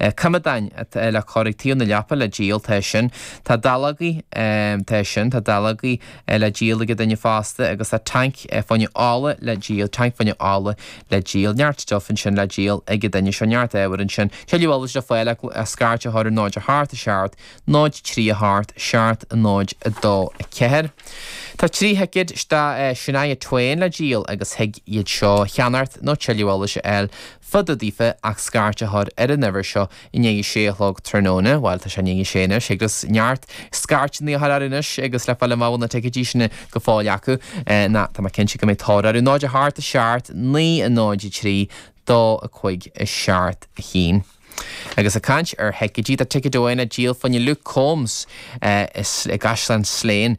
coimeádáin le cur ag taobh na leapa le díol, tá sin, tá dallógaí, tá sin, tá dallógaí le díol ag an duine fosta agus tá tanc fá choinne ola le díol, tanc fá choinne ola le díol, neart stuif ansin le díol ag an duine seo, neart ábhair ansin, tuilleadh eolais le fáil ach scairt a chur ar 0 a hocht, a seacht, 0 3 a hocht, seacht, 0 2 4 Tá trí thicéad do Shania Twain le díol agus thig iad seo a cheannacht nó tuilleadh eolais a fháil, Fá dtaobh daofa ach scairt a chur ar an uimhir seo i ndiaidh a sé a chlog tráthnóna, bhuel tá sé i ndiaidh a sé anois, agus neart scairteanna a chur air anois agus le fáil amach an bhfuil na ticéidí sin go fóill acu, nó tá mé cinnte go mbeidh tóir orthu. 0 a hocht, a seacht, 9 a 0 a 3, 2 a cúig, a seacht, a haon. Agus ag caint ar thicéidí, tá ticéad amháin le díol fá choinne Luke Combs i gCaisleán Slane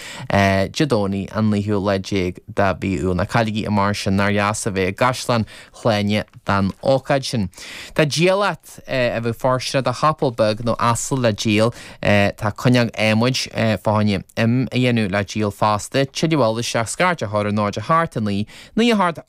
Dé Domhnaigh an naoú lá déag de mhí Iúil. Ná cailligí é mar sin, nár dheas a bheith i gCaisleán Shláine don ócáid sin. Tá diallait a bheadh fóirsteanach do chapall beag nó asal le díol, tá cuinneog adhmaid fá choinne im a dhéanamh le díol fosta, tuilleadh eolais ach scairt a chur ar 0 a hocht 9, naoi a hocht,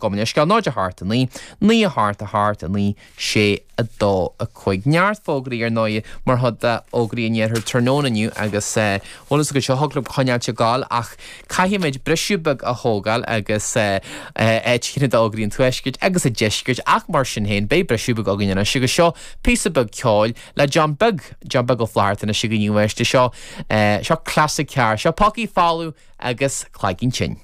gabh mo leithscéal, 0 a hocht 9, naoi a hocht a hocht 9, sé 2 5 neart fógraí, ar ndóigh, mar chuid d'fhógraí an iarthair tráthnóna inniu agus eh bhuel is go seo thiocfadh liom coinneáilt ag gabháil ach caithfimid briseadh beag a thógáil agus eh áit chinne do fhógraí an tuaiscirt agus an deiscirt ach mar sin féin beidh briseadh beag againn anois agus seo píosa beag ceoil le John Beag John Beag Ó Flatharta anois againn inniu ar seo eh seo classic ceart seo Pócaí Folamh agus Cloigeann Tinn.